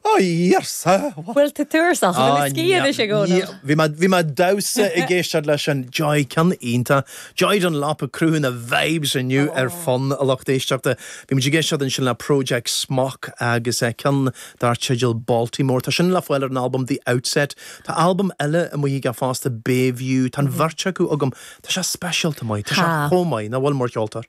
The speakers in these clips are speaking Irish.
Ó, iarrsa! Bhfuil tú tuirseach? Bhfuil a sciath anois ag Eoin Ó? Bhí mé, bhí mé damhsa ag éisteacht leis an Joy, ceann iontach. Joy Dunlop ag cruthú na vibes inniu ar Fonn, a lucht éisteachta. Bhí muid ag éisteacht ansin le Project Smok agus ceann dar teideal Baltimore. Tá sin le fáil ar an albam The Outset. Tá albam eile amuigh aige fosta, Bayview. Tá an bheirt acu agam. Tá sé speisialta maith. Tá sé chomh maith. Nach bhfuil, mar cheoltóir?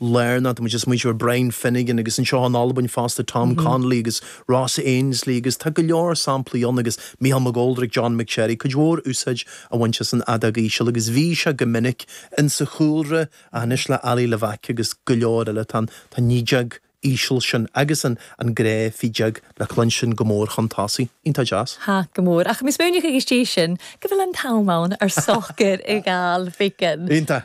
Lárnach, tá muid ag smaointiú ar Brian Finnegan agus anseo in Albain fosta Tom Connolly agus Ross Ainslie agus tá go leor samplaí ann agus Michael McGoldrick, John McSherry, cuid mhór úsáid a bhaint as an fheadóg íseal agus bhí sé go minic insa chúlra ach anois le Ali Levack agus go leor eile tá an fheadóg íseal sin agus an an grá feadóige le cluinstin go mór chun tosaigh. Iontach deas. Tha, go mór. Ach, is minic agus dí sin go bhfuil an t-am ann ar socair i gCailbhicín. Iontach.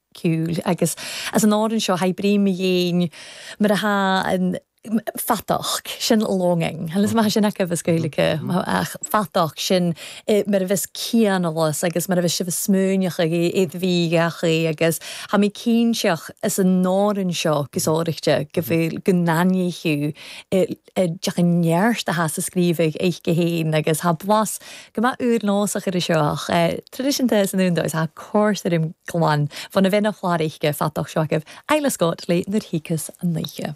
ciúil agus anns an òran seo sgrìobh mu dheidhinn mar a tha fadachd, sin longing, an bhfuil sin agaibh as Gaeilge? ach fadachd sin mar a bhios cianalas agus mar a bhios sibh a' smaoineachadh ag iad bhí gach aoí agus tha mi cinnteach anns an òran seo gu sònraichte go bhfuil go n-aithníodh D'fhéach an neart a has a scríobh aice fhèin agus tha blas gu math ùr-nòsach air seach traidiseanta san úndar. Tá cor tirim glan bhun a bhéil a' chlàr aice Fadachd seo agaibh, Isla Scott, le Nuair Thiocfas an oíche.